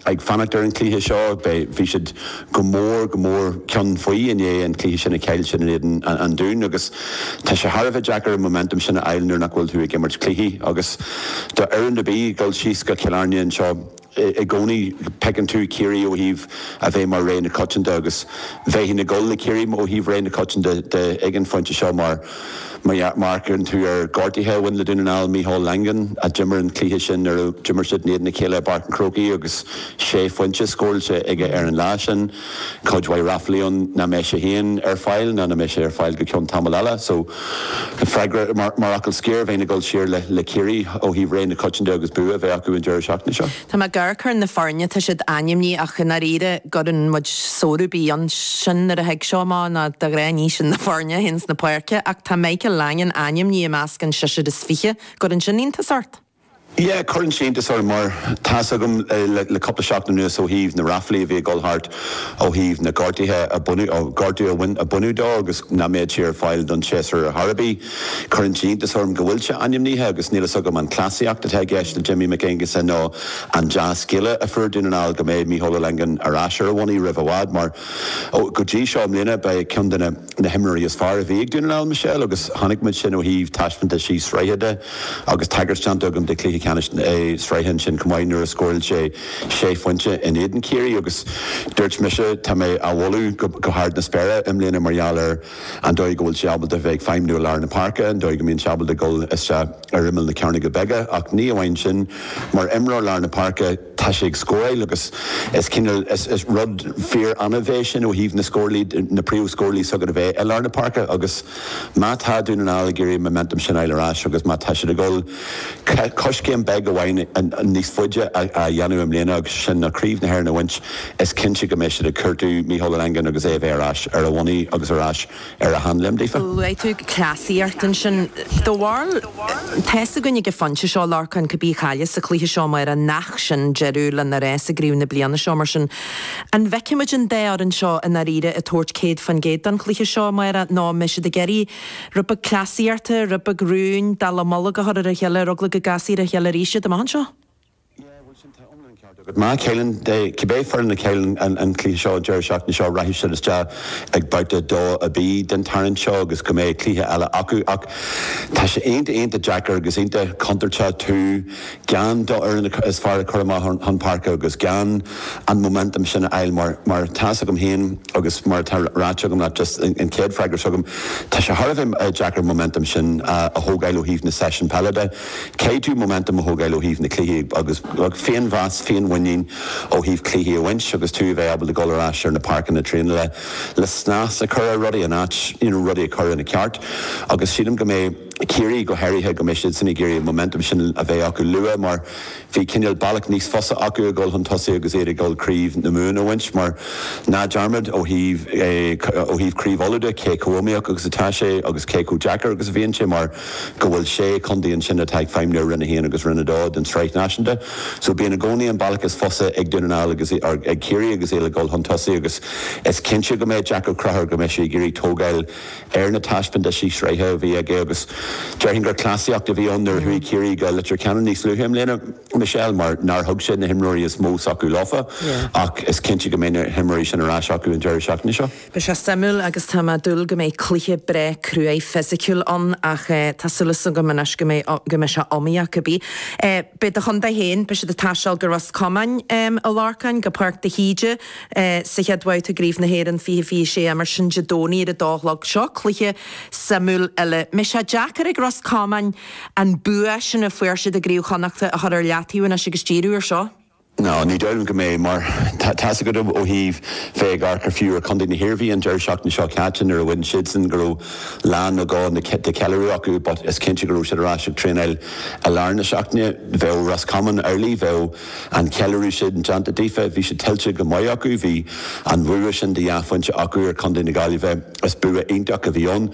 ag fanacht ar an chluiche seo. Beidh, bhí siad go mór, go mór ceann faoi i ndiaidh an chluiche sin a chaill siad in éadan an Dúin agus tá sé thar a bheith deacair an momentum sin a fháil nuair nach bhfuil tú ag imirt cluichí agus do fhoireann ar bith dul síos go Cill Airne anseo i gcónaí feiceann tú Ciarraí ó thaobh a bheith mar rogha na coitianta agus bheinn ag dul le Ciarraí ó thaobh rogha na coitianta de ag an phointe seo mar Amharcann tú ar ghortuithe a bhain le Dún na nGall, Micheál Langan a d'imir an cluiche sin nuair a d'imir siad in éadan a chéile i bPáirc an Chrócaigh agus sé phointe scóráilte aige ar an lá sin. Cuid mhaith ráflaí ann nach mbeidh sé féin ar fáil ná nach mbeidh sé ar fáil go ceann tamaill eile so freagra mar fhocal scoir bheinn ag dul siar le Ciarraí ó thaobh rogha na coitianta agus bua a bheith acu an deireadh seachtaine seo. Tá mé ag amharc ar na foirne, tá siad ainmnithe ach i ndáiríre an gcuireann muid sonrú ar bith ann sin nuair a thig seo amach nó de ghnáth ní sin na foirne a théann chun na páirce ach tá Michael Langan ainmnithe i measc an seisear is fiche an gcuireann sin iontas ort? Yeah cuireann sé iontas orm mar tá's agam le cúpla seachtain anuas ó thaobh na ráflaí a bhí ag dul thart ó thaobh na gortuithe a baineadh gortú a bhain a baineadh dó agus nach mbeadh sé ar fáil don séasúr ar chor ar bith. Cuireann sé iontas orm go bhfuil sé ainmnithe agus níl fhios agam an cleasaíocht atá i gceist le Jimmy Mac Aonghusa nó an dea-scéala a fuair Dún na nGall go mbeidh Micheál Langan ar ais ar a bhonnaí roimh i bhfad mar go dtí seo i mbliana ba é ceann de na himreoirí is fearr a bhí ag Dún na nGall Michelle agus chonaic muid sin ó thaobh taispeántaisí sraithe de agus tagairt déanta agam de chluiche ceannais na sraithe ansin chomh maith nuair a scóráil sé sé phointe in éadan Chiarraí agus dúirt mise tá mé á mholadh go hard na spéire i mbliana mar gheall ar an dóigh go bhfuil sé ábalta a bheith ag feidhmniú i lár na páirce, an dóigh go mbíonn sé ábalta dul isteach ar imeall na cearnóige bige, ach ní amháin sin, mar imreoir lár na páirce, tá sé ag scóráil agus is cineál, is rud fíor-annamh é sin ó thaobh na scórálaithe, na príomhscórálaithe s'agat a bheith i lár na páirce agus má tá Dún na nGall ag iarraidh an momentum sin a fháil ar ais agus má tá siad ag dul Coiscéim beag amháin níos faide a dhéanamh i mbliana agus sin ná Craobh na hÉireann a bhaint. Is cinnte go mbeidh siad ag cuartú Micheál Langan agus é a bheith ar ais ar a bhonnaí agus ar ais ar a sheanléim daofa. Luaigh tú cleasaíocht ansin. Dá bharr, tá's againn ag an phointe seo, a Lorcáin, cibé a chailleas sa chluiche seo amárach, nach sin deireadh lena rás i gCraobh na bliana seo mar sin. An bhfeicfimid an dá fhoireann seo i ndáiríre ag tabhairt 100% don chluiche seo amárach, nó an mbeidh siad ag iarraidh rud beag cleasaíochta, rud beag rúin, dallamullóg a chur ar a chéile, ar eagla go gcasfaí ar a chéile arís iad, amach anseo. Yeah, bhuel sin tá iomlán ceart agat. Má chailleann, cibé foireann a chailleann an, an cluiche seo deireadh seachtaine seo, rachaidh siad isteach ag babhta dó B den tarraingt seo agus go mbeidh cluiche eile acu ach tá sé iontach, iontach deacair agus iontach contúirteach tú, dhéan d'fhoireann is fearr ag cur amach chun páirce agus déan an momentum sin a fháil mar mar atá 's agam féin agus mar atá ráite agam leat just an chéad freagra seo agam tá sé thar a bheith deacair an momentum sin a a thógáil ó thaobh na seisiúin peile de caithfidh tú momentum a thógáil ó thaobh na cluichí agus féinmheas féinmhuinín ó thaobh cluichí a bhaint agus tú a bheith ábalta dul ar ais ar na páirceanna traenála le snas a chur ar rudaí an áit you know rudaí a chur ina ceart agus sílim go mbeidh Ciarraí go háirithe, go mbeidh siadsan ag iarraidh an momentum sin a bheith acu luaite mar bhí cineál bealach níos fusa acu ag dul chun tosaigh agus iad i ndiaidh Craobh na Mumhan a bhaint mar ná dearmad ó thaobh ó thaobh Craobh Uladh de cé chomh iomaíoch agus atá sé agus cé chomh deacair agus a bhíonn sé mar go bhfuil sé chontae ansin atá ag feidhmniú ar Roinn 1 agus Roinn 2 den tSraith Náisiúnta so bíonn i gcónaí an bealach is fusa a Dhónaill ag Ciarraí agus iad ag dul chun tosaigh agus is cinnte go mbeidh Jack O'Connor go mbeidh sé ag iarraidh tógáil ar na taispeántaisí sraithe a bhí aige agus déarfainn gur cleasaíocht a bhí ann nuair a chuaigh Ciarraí go Leitir Ceanainn níos luaithe i mbliana, Michelle, mar nár thug sé na himreoirí is mó s'acu leofa ach is cinnte go mbeidh na himreoirí sin ar ais acu an deireadh seachtaine seo. Beidh sé suimiúil agus tá mé ag dúil go mbeidh cluiche breá cruaidh fisiciúil ann ach tá súil as Dia agam anois go mbeidh go mbeidh sé iomaíoch ar scor ar bith. Beidh do chontae féin, beidh siad ag taisteal go Ros Comáin, a Lorcáin, go Páirc de hÍde, Sa chéad bhabhta gCraobh na hÉireann 2026 mar sin Dé Domhnaigh ar a dó a chlog, seo cluiche suimiúil eile. An mbeidh sé deacair ag Ros Comáin an bua sin a fuair siad i gCraobh Chonnachta a chur ar leataobh anois agus díriú ar seo. No ní déarfainn go mbeidh, mar tá 's agat ó thaobh bheith ag amharc ar fiú ar Chontae na hIarmhí an deireadh seachtaine seo caite nuair a bhain siadsan go raibh lá nó dhó de cheiliúradh acu but is cinnte go raibh siad ar ais ag traenáil i lár na seachtaine. Bheadh Ros Comáin ar a laghad bheadh An ceiliúradh sin déanta daofa, bhí sé tuillte go maith acu. Bhí an bua sin de dhá phointe acu ar chontae na Gaillimhe. Is bua iontach a bhí ann.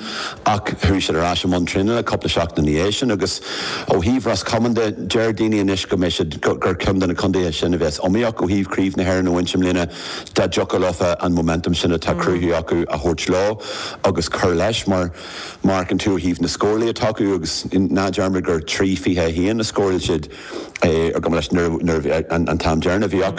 Ach chuaigh siad ar ais i mbun traenála cúpla seachtain ina dhiaidh sin agus ó thaobh Ros Comáin de, deir daoine anois go mbeidh siad, gur ceann de na contaetha sin a bheas iomaíoch ó thaobh Chraobh na hÉireann a bhaint i mbliana dá dtiocfadh leofa an momentum sin atá cruthaithe acu a thabhairt leo agus cur leis mar má amharcann tú ó thaobh na scórálaithe atá acu agus ná dearmad gur trí fiche a haon a scóráil siad ar gcuma leis nuair a bhí an t-am deireanach a bhí acu.